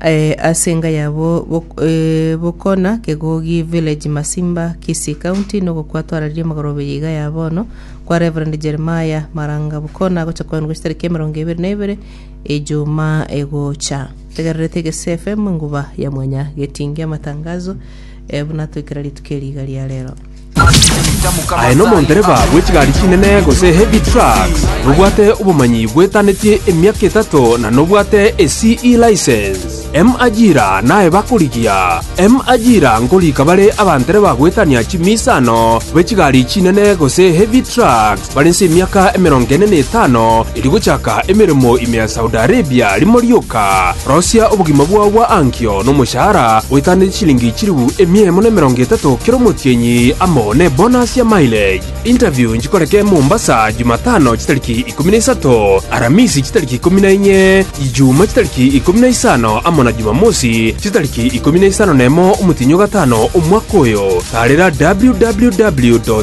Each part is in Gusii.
eh, ase enga yabo bok- eh, bokona kegogi village masimba kisii county nogokwa twararie magorobe ya iga ya bono kwa reverend jeremiah maranga bokona gocha kwenu gocha tariki emerongo ebere na ebere ejuma egocha tegererete egese fm nguba ya mwanya getingi amatangazo eh, buna twekera rituko eriga ria rero Aye nomondereba bwe chigari chinene gose heavy trucks, nobwate obomanyi bwetanetie emiaka etato na nobwate e CE license. M ajira naye bakorigia. M ajira nkorika bare abantereba goetania chimiisano be chigari chinene gose heavy trucks. Bare inse emiaka emerongo ene na etano erio gochaka emeremo ime ya Saudi Arabia, rimo rioka rosia obogima bwao bwa ankio nomoshahara oetaneti chilingi chilifu emia emo na emerongo etato kera omotienyi amo nebonus ya mileage. Interview nchikoreke Mombasa Jumatano chitariki ikomi na isato, Aramisi chitariki ikomi na inye, Ijumaa chitariki ikomi na isano amo na Jumamosi chitariki ikomi na isano nemo omotienyi ogatano omwaka oyo. Taarera www.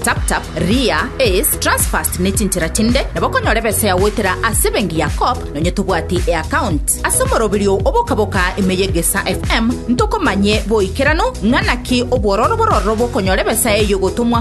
TapTap, Ria, Ace, Transfast ne chinchera chinde nabo okonyora ebesa yao goetera ase ebenki ya Co-op nonya tobwati eaccount. Ase omoroberio o bokaboka ime y'Egesaa FM ntokomanye boikeranu ng'a naki obwororo bororo bokonyora ebesa eyio gotomwa